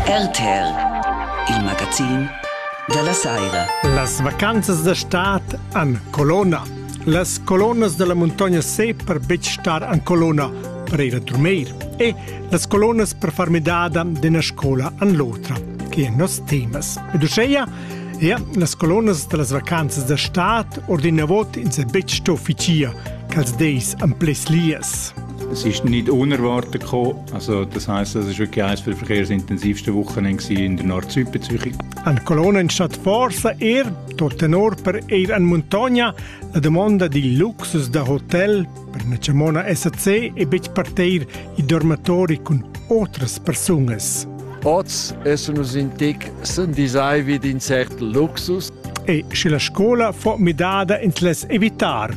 RTL, il magazin della saira. Las vacanzas da stad an colonna. Las colonnas della montagna se per betg star an colonna per ir a dormir e las colonnas per far midada d'ena scola an l'otra, che è nos temas. Ed uscheia Ja, las colonnas da las vacanzas da stad ordina vot in se betg sto ficia, ch'als deis am ples lias. Es ist nicht unerwartet gekommen, Also das heißt, das war wirklich eines der intensivsten Wochenende in der Nord-Süd bei Zürich. Eine Kolonne in Stadt Forza er, dort in Orper eher in Montagna, la domanda di luxus da hotel per una Cermona SAC e betg parteir i dormatori cun otras persunas. Oz essen nus in tic sendisai vid in cert luxus. E sche la scola fa midada ins les evitar.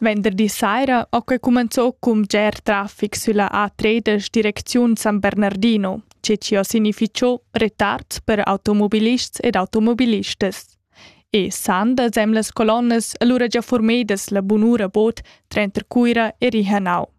Venderdi saira ho que cumenzò cun bger trafic sülla A3 da direcziun San Bernardino, che chi ho significhò retards per automobilists ed automobilistas. E san da semlas colonnas alura già formedas la bunura bod tranter Cuira e Rihanau.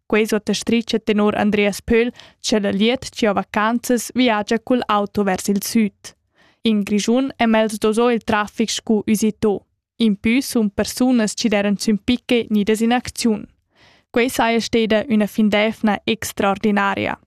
Quei sottastricha tenor Andreas Pöhl, che la liet cia vacanzas viagia cul auto vers il sud. In Grischun è mels doso il traffic scu usito. In pü sun persunas chi deran sün picche nidas in acziun. Quei saja steda üna findefna extraordinaria.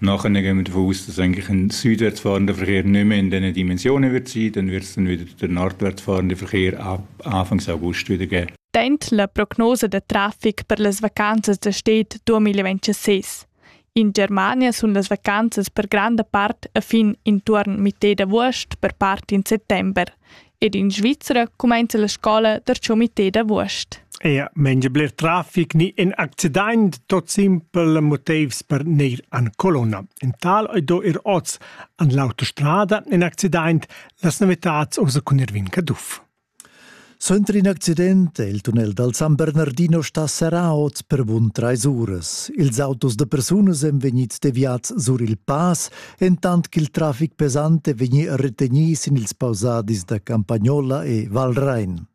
Nachher gehen wir von aus, dass eigentlich ein südwärtsfahrender Verkehr nicht mehr in diesen Dimensionen wird sein. Dann wird es dann wieder der nordwärtsfahrende Verkehr ab Anfang August wieder geben. Teint la prognosa da traffic per las vacanzas da stet 2026. In Germania sun las vacanzas per granda part a fin intuorn mitè d'avust per part in settember. ed in Svizra cumainza la scola der Comité d'Avuost. Ea, mengia bler trafic ni in accident tot simpel motivs per neir an colonna. In tal ei do ir oz an l'autostrada in accident las novitats osa cun Irvin Caduff. Suenter in accident è il tunnel dal San Bernardino sta serrà oz per bun trais uras. Ils autos da persunas èn vegnids deviads sur il pass entant ch'il trafic pesante vegni retegni sin ils pausadis da Campagnola e Valrein.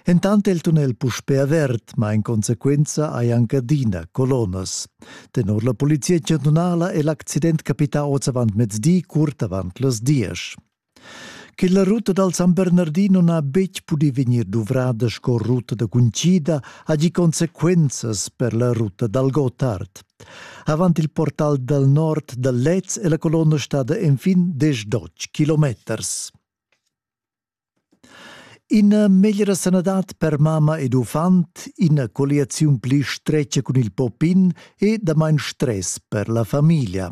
Entant è il tunnel puspè avert, ma in conseguenza hai anche adina colonas. Tenor la polizia chantunala è l'accident capità oz avant mezdi, curt avant las diesch. Che la ruta dal San Bernardin non ha betg pudì vegnir duvrada sco ruta da cuncida ha gì consequenzas per la ruta dal Gottard. Avant il portal dal nord da Lez è la colonna stada enfin diesch kilometers. Ina meglra sanadad per mamma ed uffant, ina colliaziun pli stretga cun il popin e damain stress per la famiglia.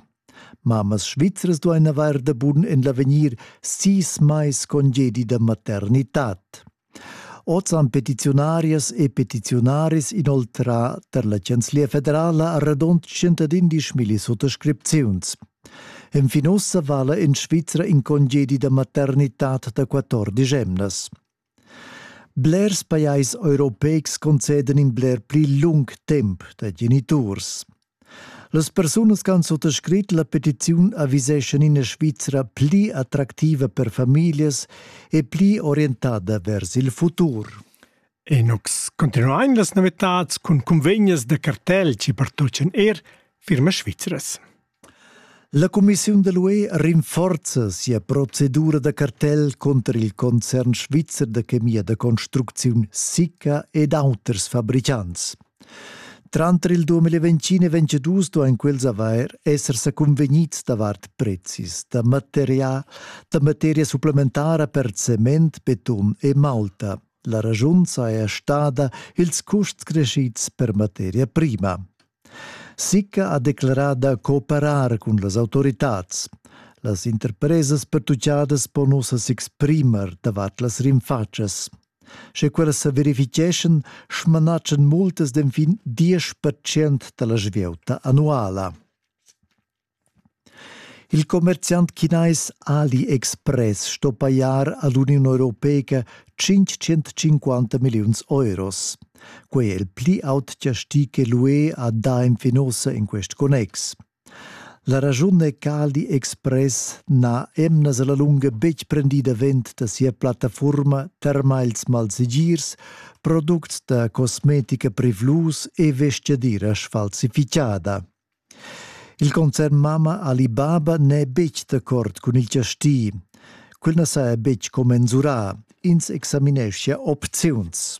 Mammas svizras duain avair da bun en l'avegnir sis mais congedi da maternitad. Oz han petiziunarias e petiziunaris inoltrà tar la Chanzlia federala a radund 111 milli suttascripziuns. Enfin ussa vala en Svizra in congedi da maternitad da 14 emnas. Blers pajais europeics concedan in bler pli lung temp da geniturs. Las persunas che han suttascrit la petiziun aviseschan ina Svizra pli attractiva per famiglias e pli orientada vers il futur. E nus continuain las novitads cun cunvegnas da cartel che pertochan er firmas svizras. La cumissiun da l'UE rinforza sia procedura da cartel cunter il concern svizzer da chemia da construcziun Sicca ed auters fabricants. Tranter il 2020 e 2022 duain quels avair esser sa convegnids davart prezis da materia, da materia supplementara per cement, beton e malta. La ragiun saja stada ils custs crescids per materia prima. Sicca ha declerà da cooperar cun las autoritads. Las interpresas pertuchadas pon ussa s'exprimer davart las rinfatschas. Sche quellas sa verificheschan, smanatschan multas d'enfin 10% da la svieuta annuala. Il commerziant chinais AliExpress sto pajar a l'Uniun europeica tschintschentcinquanta milliuns euros. Quai è il pli aut chastì che l'UE ha dà en Finosa en quest connex. La raschun è ch'AliExpress n'ha emnas a la lunga betg prendì davent da sia plattafurma termals malsegirs, products da cosmetica privlus e vestgadira sfalsifitgada. Il concern mamma Alibaba n'è betg d'accord cun il chasti. Quel na saja betg commensurà. Ins examineschia opziuns.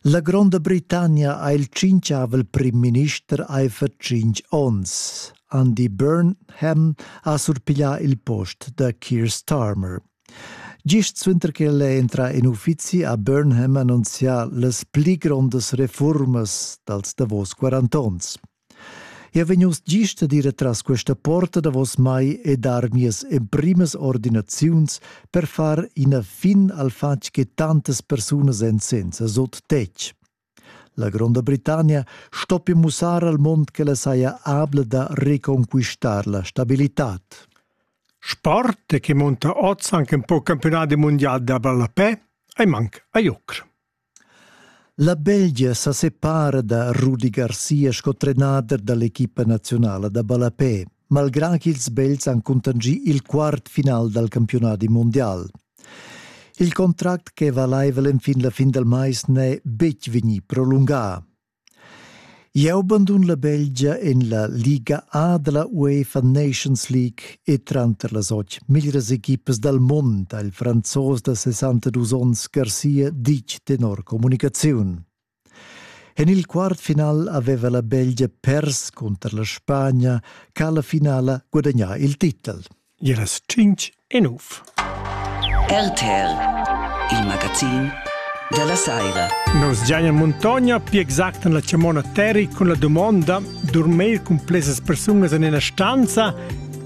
La Gronda Britannia ha il tschintgavel primminister aifer tschintg onns. Andy Burnham ha surpiglià il post da Keir Starmer. Gist suenter ch'el è entrà en uffizi ha Burnham annunzià las pli grondas refurmas dals davos 40 onns. Eu vegn uss gist ad ir atras questa porta davos mai e dar mias emprimas ordinaziuns per far ina fin al fatg che tantas persunas èn senza sot tetg. La Gronda Britannia stoppi mussar al mond ch'ella saja abla da reconquistar la stabilitad. Sport che monta oz anche un po' campionati mondiali da ballapè ei manca a Jucr. La Belgia sa separa da Rudi Garcia sco trenader dall'equipa nazionale da ballapè. malgrà ch'ils Belts han cuntanschì il quart final dal campiunadi mundial. Il contract ch'è valaivel enfin la fin dal mais n'è betg vegnì prolungà. Jau bandun la Belgia en la Liga A da la UEFA Nations League e tranter las otg meglras equipas dal mund ha il franzos da 62 onns Garcia ditg tenor communicaziun. En il quart final aveva la Belgia pers cunter la Spagna ch'ha la finala gudagnà il titel. Iras 5 e 9. RTL, il magazin della Saira. Nos Gianni Montogna, più exact la chiamona Terry, con la domanda dormir con plesas persunas in una stanza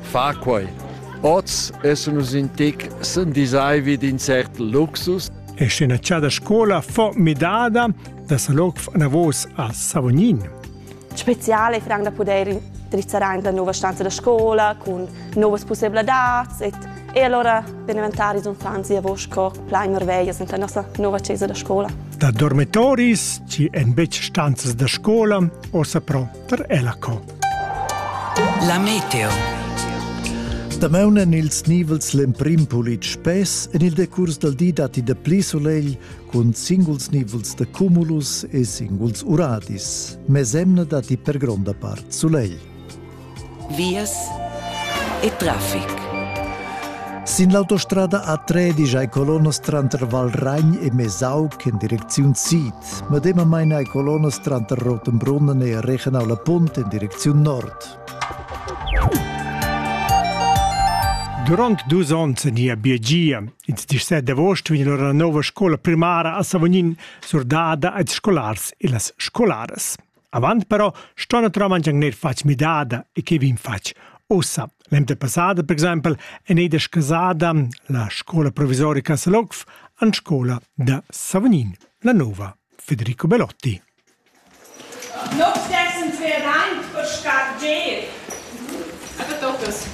Fa quei! Oz essen nus in tic sendisaivi d'in cert luxus. E scena da scola fu midada da Saloc anavos a Savognin. Speziale franc da poder drizzar aint la nova stanza da scola cun novas possibilitads e, e allora per diventare ils uffants lavor sco plain marveglias in la nostra nova chesa da scola. Da dormitoris, ci en betg stanzas da scola, ossa pro per ella co. La meteo. Damaun en ils nivels l'emprim pulit spess, en il decurs dal di datti de pli solegl cun singuls nivels de cumulus e singuls uradis. Mesemna datti per gronda part solegl. Vias e traffic. Sin l'autostrada A3 digiai colonnas tranter Valragn e Mesau in direcziun sid. Medemamain hai colonnas tranter Rotenbrunnen e Regenau la Punt in direcziun nord. Durant dus onns nia biegia. Ils 17 d'agost vegn la nova scola primara a Savognin surdada als scolars e las scolaras. Avant però sto naturalmente gnir fatg midada e che vin fatg Ussa, l'emda passada, per exempel, è neida scasada la scola provvisorica Salogf an scola da Savognin, la nova Federico Belotti. Noch 26 Jahre alt, was steht geht? Aber doch, das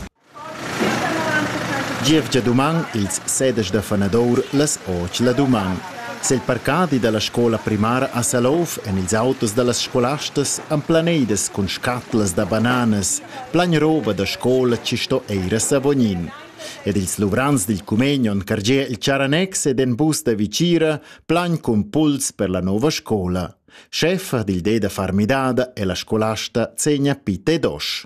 Gievgia duman ils sedisch da fanadur las otg la duman. Sil parcadi dalla scola primara a Salouf en ils autos dallas scolastas emplaneidas cun scatlas da bananas, plagnrova da scola ci sto eir a Savognin. Ed ils luvrants dil cumegnon cargier il Charanex ed en bus da Vicira plan cun puls per la nova scola. Scheffa dil de da far midada e la scolasta segna pite dosh.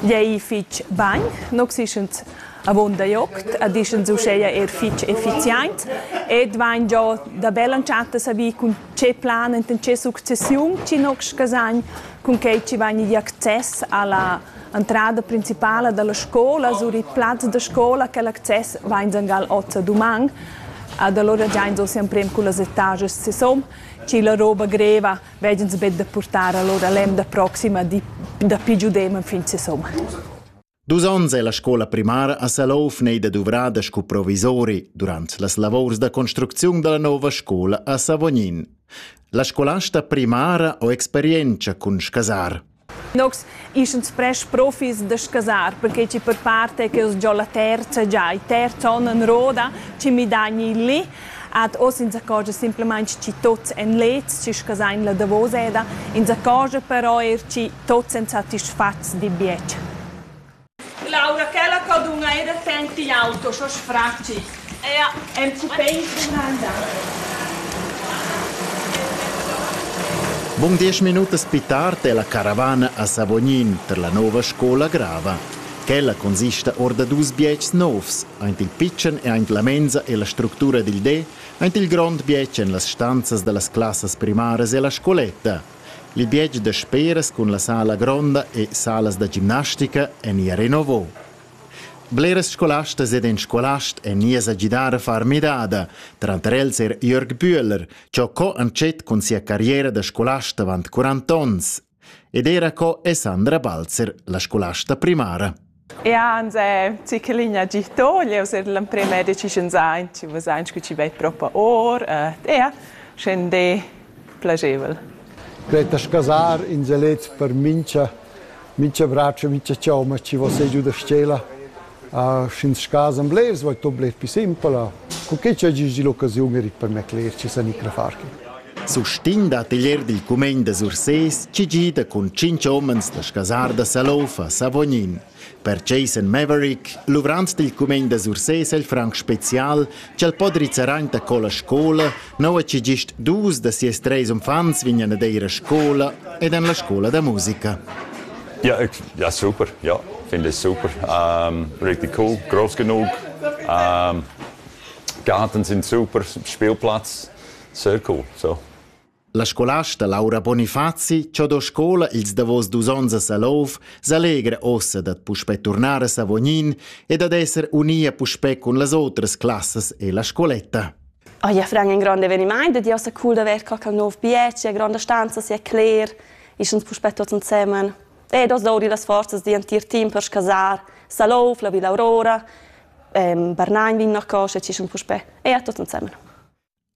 Gl'ei fetg bein, nus ischens avunda gl'oct ed ischens uscheia er fetg effiziaint ed vain giò da bella entschatta savì cun tge plan enten tge successiun chi nox scasagn cun quai chi vain igl access alla entrada principala dalla scola sur il plaz da scola. Quel access vains angal hoz ad uman ed alura giains hoz emprem cullas etajas sesom, chi la roba greva vegins betg da purtar allora l'emda proxima di da pi giudem fin se somma. Dus onns è la scola primara a Salouf neida duvrada sco provisori durant las lavors da construcziun della nova scola a Savognin. La scolasta primara ho experienza cun scasar. Nogs ischan spresch profis da scasar, perquei chi per part è che giò la terza già il terz on en roda, chi midagn il li. Ad hoz insaccorgia simplamaing chi tuots èn leds, chi scasain la davoseda, insaccorgia però eir chi tuots èn satisfats d'il bietg. Laura, quella co dunna era senti auto sco sfratgi, era enzupein granda. Bun diesch minutas più tard è la caravana a Savognin per la nova scola grava. Quella consista or da dus bietgs novs, aint il pitschen e aint la menza e la structura dil de, aint il grond bietg en las stanzas dallas classas primaras e la scoletta, L'imbiegi da speras cun la sala gronda e salas da gimnastica èn ia renovò. Bleras scolastas ed in scolast èn ias a gidar a far midada, tranter els er Jörg Bühler, cho co entschet cun sia carriera da scolast avant 40 onns, ed era co è Sandra Balzer la scolasta primara. Ja, ansè, zichelin ha gih to, jeu s'er l'emprema decisiun zain, chi vazain scu chi vei propa or, ja, schain d'he plagevel. Greta Scasar in zelets per mincha mincha bratscha, mincha chauma chi vo sè giù da s-chela. Sch'ins scasam blers, vo to bler pi simpel. Cu che cha gis di l'occasiun erit per me cler, chi sa ni cra far chi. Sustin dat igl er dil cumegn da Sursés, chi gida cun tschintg homens da scasar da Salofa, Savognin. Per Jason Maverick, luvrant dil cumegn da Sursés el franc special, ch'el po drizzar aint a colla scola, nua chi gist dus da sies treis uffants vignan ad eir a scola ed an la scola da musica. Ja, ja super, ja, finde ich super. Um, richtig cool, groß genug. Um, Garten sind super, Spielplatz. Serco, so. La scolasta Laura Bonifazi, cho do scola ils davos dus ons a Salov, s'allegra ossa dad puspè turnar a Savognin e dad esser unia puspè cun las otras classas e la scoletta. Ah ja, Frank, ein grand eveniment, dat ja sa cool da ver qualche nov bieci, grande stanza si è cler, ischens puspè tutti insieme. E das dauri las forzas di entir team per scasar Salov, la Villa Aurora, ehm, Barnagn vin nach cosce, ci schon puspè. E a tutti insieme.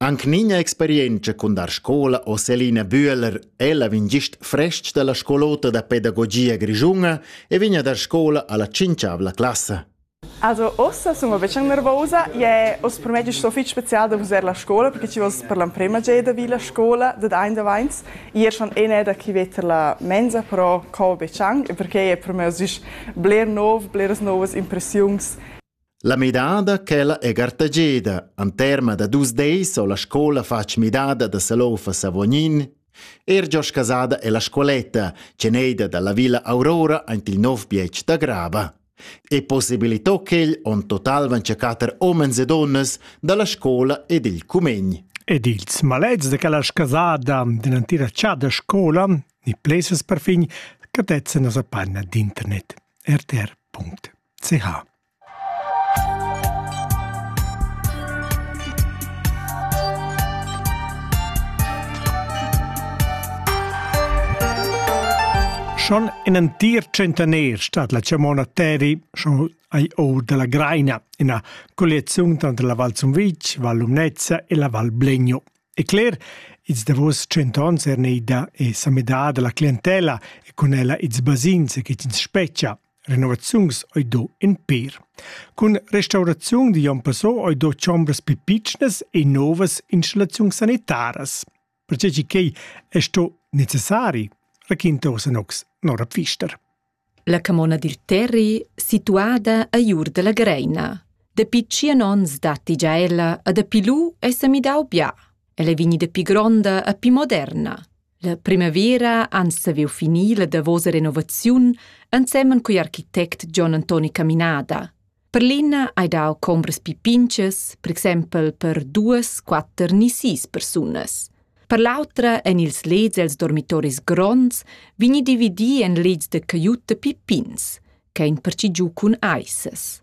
Anc nigna experientscha cun dar scola ò Selina Bühler, ella vegn gist frestg dalla scolota da pedagogia grischunga e vegn a dar scola alla cinchiavla classa. Also, ossa sono vecchia nervosa e os per me sto fitg special da vusar la scola perché ci vos per l'emprema geda vi la scola da dain davanti ieri schon ene da chi vetter la mensa però co be chang perché è per me os isch bler nov, bleras novas impressiuns La midada quella è gartageda. An terma da dus deis ho la scoula fatg midada da Salouf a Savognin. Er Giosch Casada è la scoletta, ceneida dalla Villa Aurora aint il nov bietg da Grava. E possibilitò quel on total van catter omens e donnas dalla scoula ed il cumegn. Ed ils malets de quella scasada dell'antira chada scola, ni places per fin, catetzen as apanna d'internet. rtr.it ch. Schon in ein dir tschentaner stat la chamona Teri schon ai or dalla Greina, ina colliaziun tranter la Val Zumvitg, Val Lumnezza e la Val Blegno. E cler, ils davos cent onns er neida e samedada la clientela e cun ella ils basins che ins speccia. Renovaziuns ei do in pêr. Cun restauraziun di Jon Passò ei do chombras pli pitschnas e novas installaziuns sanitaras. Pertgei ch'ei è sto necessari, raquinta Osanox Nora Pfister. La camona dil Terri, situada a Iur della Greina. Dapi tschien onns datti già ella a dapi lu è semidau bia. Ella è vegnida pi gronda a pi moderna. La primavera han saviu finir la davosa renovaziun ensemen cugl architect John Antoni Caminada. Per l'ina hai dau combras pi pinchas, per exempel per duas, quatter ni sis persunas. Per l'autra en ils leds els dormitoris gronds vegni dividi en leds de caiutta pi pins, che ein perci giu cun aissas.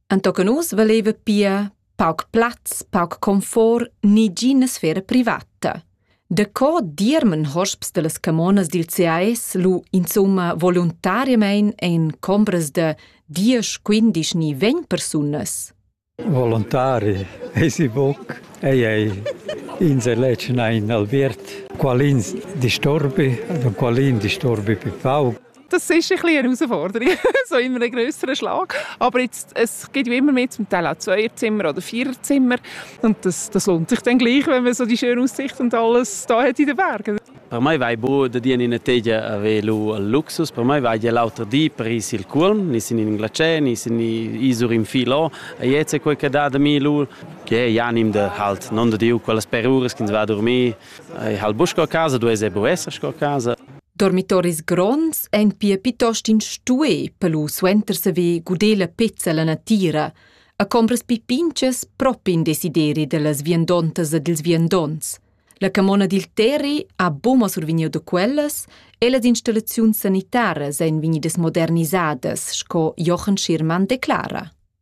Entochen uss valeva pia pauc plaz, pauc confort ni gina sfera privata. Daco dirmen hosps dallas camonas dil CAS lu insumma voluntariamein en combras da 10, 15 ni 20 persunas? Volontari esi buc. Ei ei ins eletg ein Albert. Qualin disturbi, qualin disturbi pi pauc. das ist ein bisschen eine Herausforderung, so in einem größeren Schlag. Aber jetzt, es gibt ja immer mehr zum Teil auch Zweierzimmer oder Viererzimmer und das, das lohnt sich dann gleich, wenn man so die schöne Aussicht und alles da hat in den Bergen. Per me vai bu da dir in tegia velo al luxus, per me vai dir l'auter di Paris il Culm, ni sin in Glace, ni sin isur in Filo, e jetzt quel che da da mil che janim da halt non da diu quelle per ures che va dormir, e hal busco a casa, du es e bu esser sco casa. Dormitoris gronds ein pia piuttost in stué per lu suenter saver guder la pezza la natira a combras pi pintgas propi in desideri dallas viandontas e dils viandonts. La camona dil Terri ha buma survegniu da quellas e las installaziuns sanitaras ein vegnidas modernisadas, sco Jochen Schirmann declara.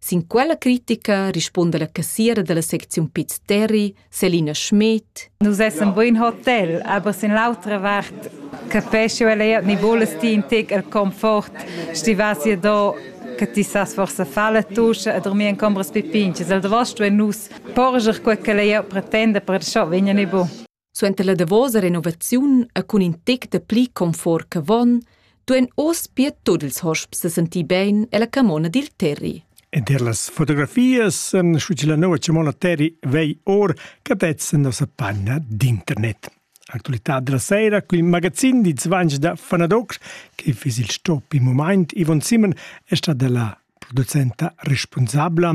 Sin quella critica rispunda la cassiera dalla secziun Piz Terri, Selina Schmidt. Nus essan buin hotel, aber sin l'autra vart capesci ella ja ni vules ti in tec el confort, sti vas ja do che ti sas forse fare tusche e dormir in combras pipinches. El da vosto e nus porger quel che lei pretenda per scho vegna ne bu. Suenter la davosa renovaziun e cun in tec da pli confort ch'avon, duein oz pia tut ils hosps sentir bein ella camona dil Terri. Ed er las fotografias en scu la nova Cimona Terri vei or catezzan nossa panna d'internet. Actualità della sera con il magazin di Zvanj da Fanadox, che fis il stop in moment Ivon Simon è stata la producenta responsabla